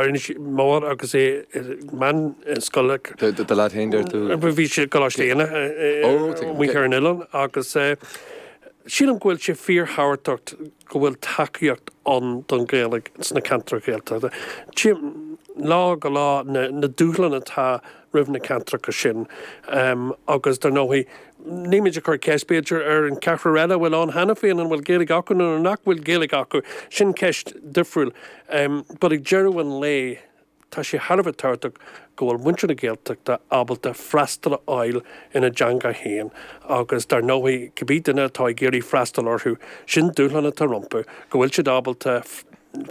Inis Mór agus é i mbun scoile. Do lead féin deir tú? Bhí sé i gColáiste Éanna amuigh ar an oileán agus sílim go bhfuil sé fíorthábhachtach go bhfuil tacaíocht ann don Ghaeilge sna ceantair Ghaeltachta. Tchím lá go lá na dúshláin atá roimh na ceantracha sin agus dar ndóigh níl muid ag cur ceist b'fhéidir ar an cheathrar eile a bhfuil ann cheana féin, an bhfuil Gaeilge acu nó nach bhfuil Gaeilge acu, sin ceist difriúil but ag deireadh an lae tá sé thar a bheith tábhachtach go bhfuil muintir na Gaeltachta ábalta freastal a fháil ina dteanga féin agus dar ndóigh cibé duine atá ag iarraidh freastal orthu sin dúshlán atá rompu go bhfuil siad ábalta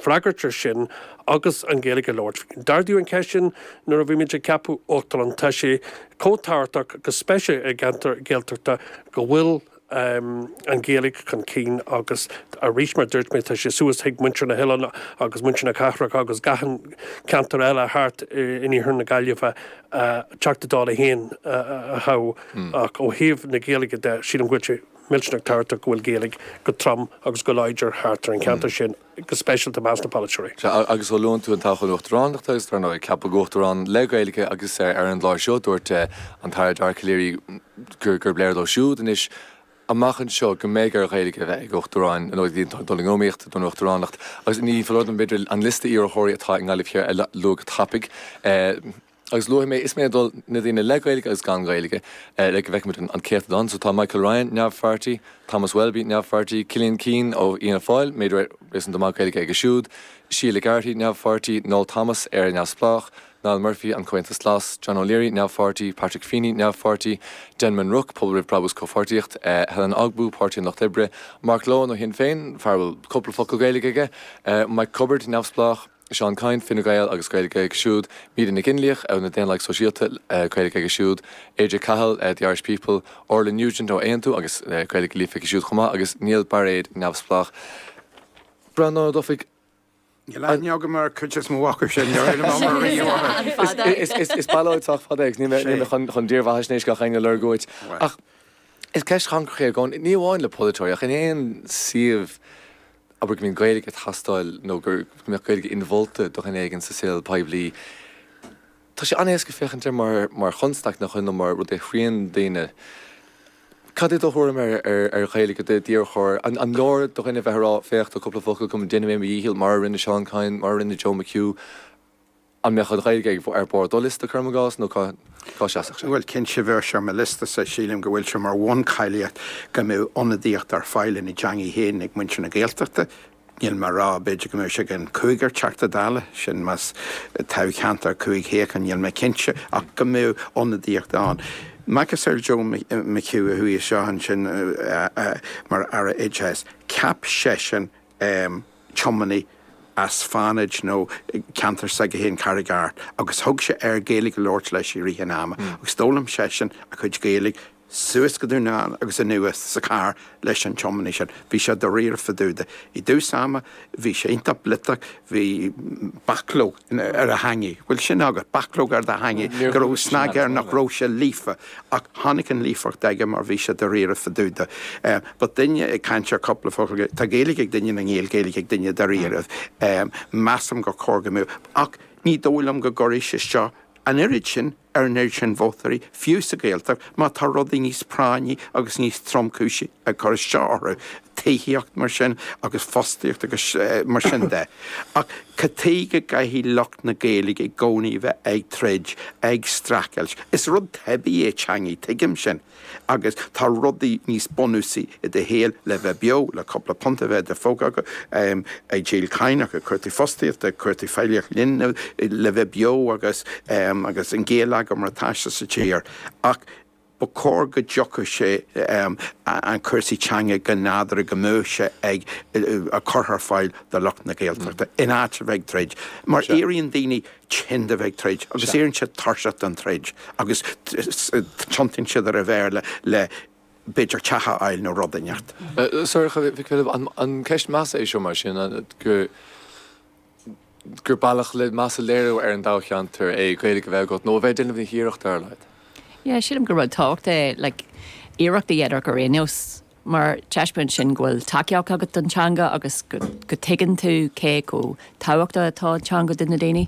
freagairt air sin agus an Ghaeilge a labhairt. D'ardaíodh an cheist sin nuair a bhí muid ag ceapadh Uachtarán. Tá sé chomh tábhachtach, go speisialta i gceantair Ghaeltachta, go bhfuil an Ghaeilge chun cinn agus arís, mar a dúirt mé, tá sé suas chuig muintir na hoileáin agus muintir na cathrach agus gach aon cheantar eile thart in iarthar na Gaillimhe, Teachta Dála féin a thoghadh. Ach ó thaobh na Gaeilge de, sílim go bhfuil sé. millteanach tábhachtach go bhfuil Gaeilge go trom agus go láidir thart ar an cheantar sin, go speisialta i measc na polaiteoirí. Sea, agus ó luann tú an toghchán Uachtaránachta, agus dar ndóigh, ceapadh Uachtarán le Gaeilge, agus ar an gclár seo, dúirt an tAire Dara Calleary gurb léir dó siúd anois, amach anseo, go mbeidh ar Ghaeilge a bheith ag Uachtaráin, nó iad atá ag dul in iomaíocht don Uachtaránacht, agus ní foláir dom b'fhéidir an liosta iarrthóirí atá i nGaillimh Thiar a lua go tapaidh. Agus luafaidh mé, is mé ag dul, na daoine le Gaeilge agus gan Gaeilge, le go bhfeicfimid an céatadán. So tá Michael Ryan, neamhpháirtí, Thomas Welby, neamhpháirtí, Cillian Keane ó Fhianna Fáil, méid réasúnta maith Gaeilge aige siúd, Sheila Garrity, neamhpháirtí, Noel Thomas, Éire Neamhspleách, Niall Murphy, An Comhaontas Glas, John O'Leary, neamhpháirtí, Patrick Feeney, neamhpháirtí, Denman Rooke, Pobal Roimh Brabús Comhpháirtíocht, Helen Ogbu, Páirtí an Lucht Oibre, Mark Lohan ó Shinn Féin, fear a bhfuil cúpla focal Gaeilge aige, Mike Cubbard, neamhspleách. Seán Kyne, Fine Gael, agus Gaeilge aige siúd, Míde Nic Fhionnlaoich, na Daonlathaigh Sóisialta, Gaeilge aici siúd, AJ Cahill, The Irish People, Orla Nugent ó Aontú agus Gaeilge líofa aici siúd chomh maith, agus Néill Bairéad, Neamhspleách. Breandán Ó Dufaigh. Níl aithne agam ar cuid des mo mhacaibh sin, níor fhill mé orthu riamh. Is ballóid sách fada é agus níl mé chun dírbheathaisnéis gach éinne a lorg uait. Ach is ceist chancrach é i gcónaí, ní amháin le polaiteoirí ach in aon suíomh, abair go mbíonn Gaeilge ag teastáil nó gur go mbeadh Gaeilge inmholta do dhuine éigin sa saol poiblí. Tá sé an-éasca féachaint air mar chonstaic nach ionadh, mar rud a chriathraíonn daoine. Cad é do thuairim ar ar Ghaeilge d'iarrthóir? An leor do dhuine bheith a rá, 'Féach, tá cúpla focal agam, déanfaidh mé mo dhícheall, mar a rinne Seán Kyne, mar a rinne Joe McHugh. An mbeadh an Ghaeilge ag, ar bharr do liosta, cuirim i gcás, nó cá seasfadh sé? Bhuel, cinnte bheadh sé ar mo liosta-sa, sílim go bhfuil sé mar bhuncháilíocht go mbeadh ionadaíocht ar fáil ina dteangaidh féin ag muintir na Gaeltachta, níl mé a rá, b'fhéidir go mbeadh sé ag an cúigear Teachta Dála, sin más toghcheantar cúig shuíochán, níl mé cinnte, ach go mbeadh ionadaíocht ann. Macasamhail Joe McHugh a chuaigh isteach ansin mar Aire Oideachais, cheap seisean um tiománaí as Fánaid nó ceantar s'aige féin, Carraig Airt, agus thug sé air Gaeilge a labhairt leis i rith an ama agus d'fhoghlaim seisean a chuid Gaeilge suas go Dún na nGall agus anuas sa charr leis an tiománaí sin. Bhí sé dáiríre fadúda. I dtús ama bhí sé iontach bliotach, bhí bachlóg. ar a theangaidh. Bhfuil sin agat, bachlóg ar do theangaidh? Go raibh snag air nach raibh sé líofa. Ach tháinig an líofacht aige mar bhí sé dáiríre fadúda. But duine ag caint ar chúpla focal, tá Gaeilge ag duine nó níl Gaeilge ag duine dáiríre. Measaim gur chóir go mbeadh. Ach ní dóigh liom go gcuirfidh sé isteach an oiread sin. ar an oiread sin vótóirí, fiú sa Ghaeltacht, má tá rudaí níos práinní agus níos tromchúisí ag cur isteach orthu, tithíocht, mar sin, agus fostaíocht agus mar sin de. Ach cad chuige a gcaithfidh lucht na Gaeilge i gcónaí a bheith ag troid, ag streachailt. Is rud teibí é teangaidh, tuigim sin. Agus tá rudaí níos bunúsaí i do shaol le bheith beo, le cúpla punt a bheith i do phóca agat, ag díol cánach, ag cuartú fostaíochta, ag cuartú feighlíocht linbh, le bheith beo agus agus an geilleagar mar tá sé sa tír. Ach ba chóir go dtiocfadh sé an cúrsaí teanga go nádúrtha go mbeadh sé ag curtha ar fáil do lucht na Gaeltachta in áit a bheith ag troid mar éiríonn daoine tinn de bheith ag troid agus éiríonn siad tuirseach den troid agus tiontaíonn siad ar an Bhéarla le b'fhéidir teach a fháil nó rud inteacht. So, an ceist measa é seo mar sin, gur bealach le meas a léiriú ar an dtoghcheantar é Gaeilge a bheith agat nó a bheith ag déanamh na hiarrachta ar a laghad? Yeah, sílim gur rud tábhachtach é like iarracht a dhéanamh ort ar aon nós mar taispeánann sin go bhfuil tacaíocht agat don teanga agus go dtuigeann tú cé chomh tábhachtach atá an teanga do na daoine.